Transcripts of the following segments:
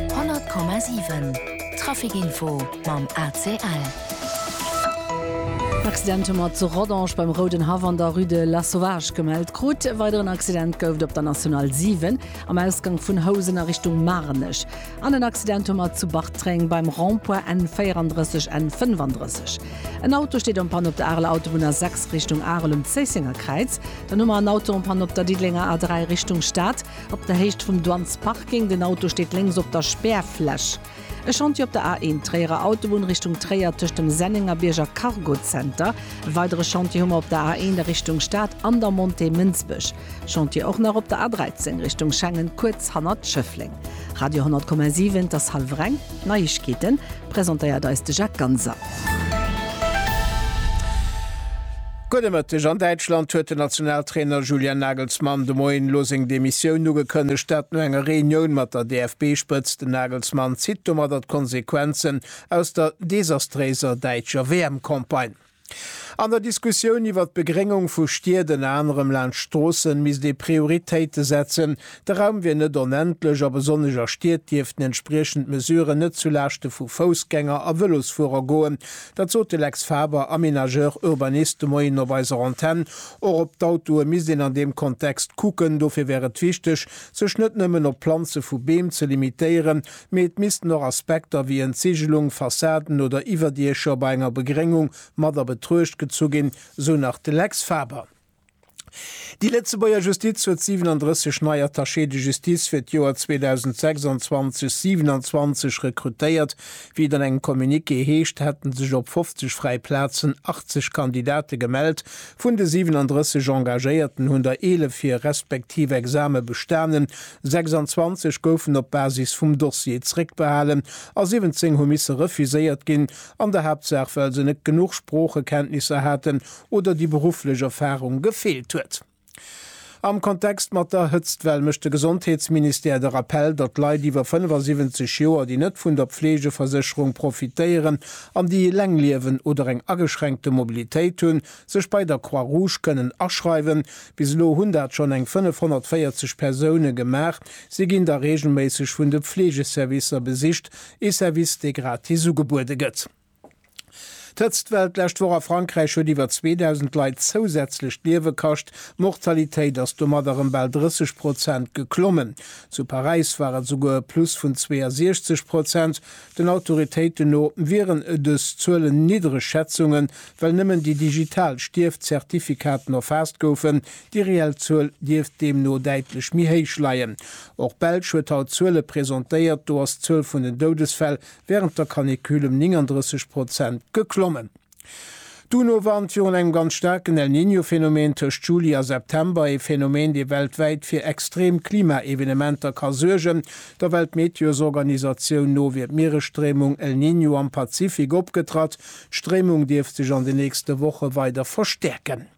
100,7 Trafic Info mam ACL. Accident hu mer zu Rodange beim Rouden Haff an der Rue de Lasauvage gemellt krut. E weideren Accident gouf et op der National 7 am Ausgank vun Housen a Richtung Maarnech an en Accident hu mer zu Bartreng beim Rond-point N 34, N 35. En Auto steet en panne op der Areler Autobunn A 6 Richtung Arel um Zéissenger Kräiz. Dann hu mer en Auto en panne op der Diddelenger A 3 Richtung Stad. Op der Héicht vum Duan's Parking, den Auto steet lénks op der Spärfläch. E Chantier op der A1, Tréierer Autobunn Richtung Tréier, tëscht dem Sennengerbierg a Cargozenter. E weidere Chantier hu mer op der A1 a Richtung Stad an der Montée Mënsbech. Chantier och nach op der A13, Richtung Schengen, kuerz hannert Schëffleng. Radio 10,7, 't ass hallwer eng. Neiegkeeten, presentéiert eis de Jacques Ganser. Gudde Mëtteg, An Däitschland huet den Nationaltrainer Julian Nagelsmann de Moien elo seng Demissioun ugekënnegt. Dat no enger Reunioun mat der DFB-Spëtzt. Den Nagelsmann zitt domadder d'Konsequenzen aus der desastréiser däitscher WM-Campagne. An der Diskussioun iwwert d'Begréngung vu Stied, ënner anerem laanscht Stroossen, misst ee Prioritéite setzen. De Raum wier net onendlech a besonnesch a Stied dierften entspriechend Mesuren net zu Laaschte vu Foussgänger a Vëlosfuerer goen. Dat sot de Lex Faber, Aménageur urbaniste, de Moien op eiser Antenn. Och op d'Autoe misst een an deem Kontext kucken. Dofir wär et wichteg, sech net nëmmen op d'Planze vu Beem ze limitéieren, Mee et missten och Aspekter wéi Entseegelung, Fassaden oder Iwwerdiecher bei enger Begréngung mat a Betruecht gezu ginn, sou nach de Lex Faber. Déi Lëtzebuerger Justiz huet 37 nei Attachés de justice fir d'Joer 2026, 27 rekrutéiert. Wéi et an engem Communiqué heescht, hätte sech op 50 fräi Plazen 80 Kandidate gemellt. Vun de 37 Engagéierten hunn der 11 hir respektiv Exame bestanen, 26 goufen op Basis vum Dossier zréckbehalen a 17 hu misse refuséiert ginn, an der Haaptsaach well se net genuch Sproochekenntnisser haten oder déi berufflech Erfarung gefeelt huet. Am Kontext mat der Hëtztwell mécht de Gesondheetsministère de Rappell, datt Leit iwwer 75 Joer, déi net vun der Pflegeversécherung profitéieren an déi Elengliewen oder eng ageschränkte Mobilitéit hunn, Sech bei der Croix Rouge kënnen aschreiwen. Bis elo hunn dat schonn eng 540 Persoune gemaach. Si ginn da reegelméisseg vun de Fleegeservicer besicht, ee Service, dee gratis ugebuede gëtt. D'Hëtztwell d'lescht Woch a Frankräich huet iwwer 2.000 Leit zousätzlech d'Liewe kascht. D'Mortalitéit ass domadder ëm bal 30 Prozent geklommen. Zu Paräis war et souguer e Plus vun 62 Prozent. Den Autoritéiten no wieren dës Zuelen niddreg Schätzungen, Well nëmmen déi digital Stierfzertifikaten erfaasst goufen, déi reell Zuel dierft deemno däitlech méi héich leien. Och d'Belsch huet haut Zuele presentéiert, do ass d'Zuel vun den Doudesfäll wärend der Canicule ëm 39 Prozent geklommen. D'UNO warnt virun engem ganz staarken El Niño Phänomen tëscht Juli a September, ee Phänomen, dee weltwäit fir extrem Klimaevenementer ka suergen. Der Weltmeteosorganisatioun no wier d'Mieresstréimung El Niño am Pazifik opgetratt, D'Stréimung dierft sech an den nächste Woche weider verstäerken.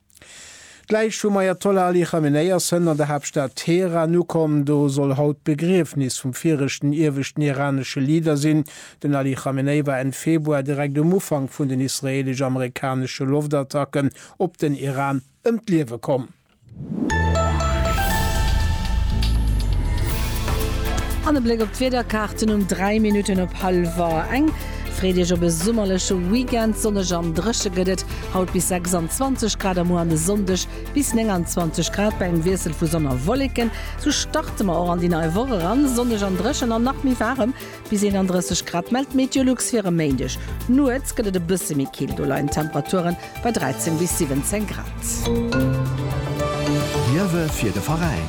D'Läich vum Ajatollah Ali Chamenei ass hënt an der Haaptstad Teheran ukomm. Do soll haut d'Begriefnis vum viregten ieweschten iranesche Leader sinn. Den Ali Chamenei war Enn Februar, direkt um Ufank vun den israeelesch-amerikanesche Loftattacken op den Iran, ëm d'Liewe komm. An e Bléck op d'Wiederkaarten um 3 Minutten op hallwer eng. Freet Iech op e summerleche Weekend, sonneg an dréche gëtt et haut bis 26 Grad a muer an de Sonndeg bis 29 Grad bei engem Wiessel vu Sonn a Wolleken. Sou starte mer och an déi nei Woch eran, sonneg an dréchen an nach méi waarem. Bis 31 Grad mellt d'Meteolux fir e Méindeg. Nuets gëtt et e bësse méi kill, do leien d'Temperature bei 13 bis 17 Grad. Liewe fir de Veräin.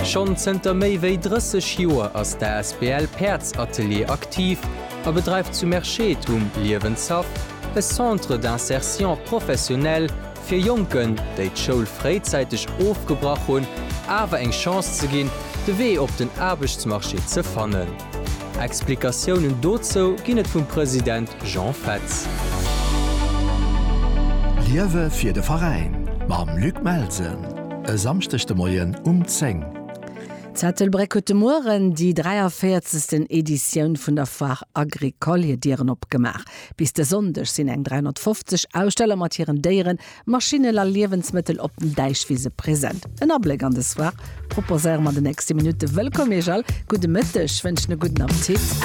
Schonn zënter méi wéi 30 Joer ass d'asbl Päerdsatelier aktiv a bedreift zu Merschette um Liewenshaff e Centre d'insertion professionnelle fir Jonken, déi d'Schoul fréizäiteg ofgebrach hunn, awer eng Chance ze ginn, de Wee op den Aarbechtsmarché ze fannen. Explikatiounen dozou ginn et vum President Jean Fetz. Liewe fir de Veräin mam Luc Melsen e Samschdeg de Moien um 10. D'Ettelbréck huet de Mueren déi 43. Editioun vun der Foire Agricole hir Dieren opgemaach. Bis de Sonndeg sinn eng 350 Aussteller mat hiren Déieren, Maschinnen a Liewensmëttel op den Däichwise present. En Abléck an des Foire proposéiere mer an de nächste Minutte. Wëllkomm Iech all, gudde Mëtteg, wënschen e gudden Appetit.